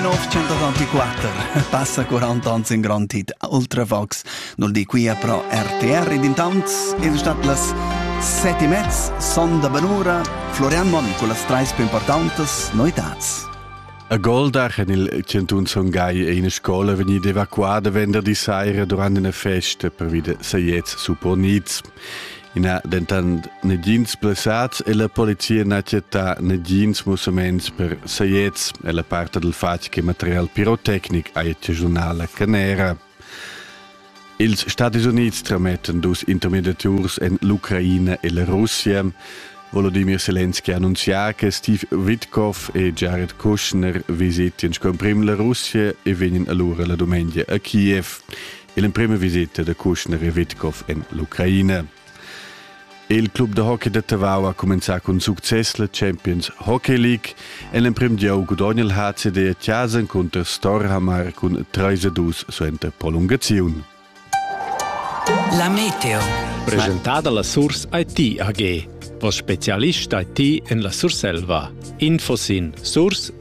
904 passa 40 ans in grand hit Ultravox nul di qui a pro RTR ed intant es stat las sette e mezz son da Benura Florian Monn con las treis più importantes noitats A Goldach en il Cantun Son Gai è ina scola vegnida evacuada vender di saira durant una festa per vide sajets supponits. I n'ha dentant negins blessats e la polizia n'ha chattà negins mussaments per saiets e la part dal fatg che material pirotecnic ha giunà la canera. Ils Stati Unids tramettan dus intermediaturs en l'Ucraina e la Russia. Volodymyr Zelensky annunzià che Steve Witkoff e Jared Kushner visitian scomprim la Russia e vegnan allora la dumengia a Kiev. l'emprima visita da Kuschner e Witkov en l'Ucraina. Il club da hockey da Tavau ha comenzà cun success la Champions Hockey League e l'emprim gieu gudogna il HCD a Chasen cunter Storhamar cun 3-2 suenter prolungaziun. La Meteo. Presentada la Source IT AG. Vos specialist IT en la Surselva. Info sin source-it.ch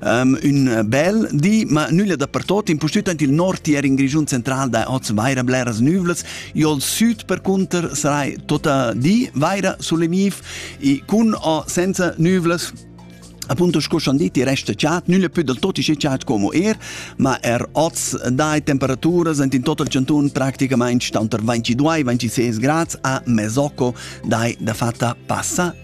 Um, un bel di, ma nulla dappertut, impustüt aint il nord tier in Grischun central da oz vaira bleras nüvlas, io al sud per conter sarai tota di vaira solemiv e cun o senza nüvlas Appunto sco schon diti resta chat, nulla più del tot isce chat como er, ma er oz dai temperaturas ent in total Centun practicamente stanter 22-26 grads a Mesocco dai da fatta passa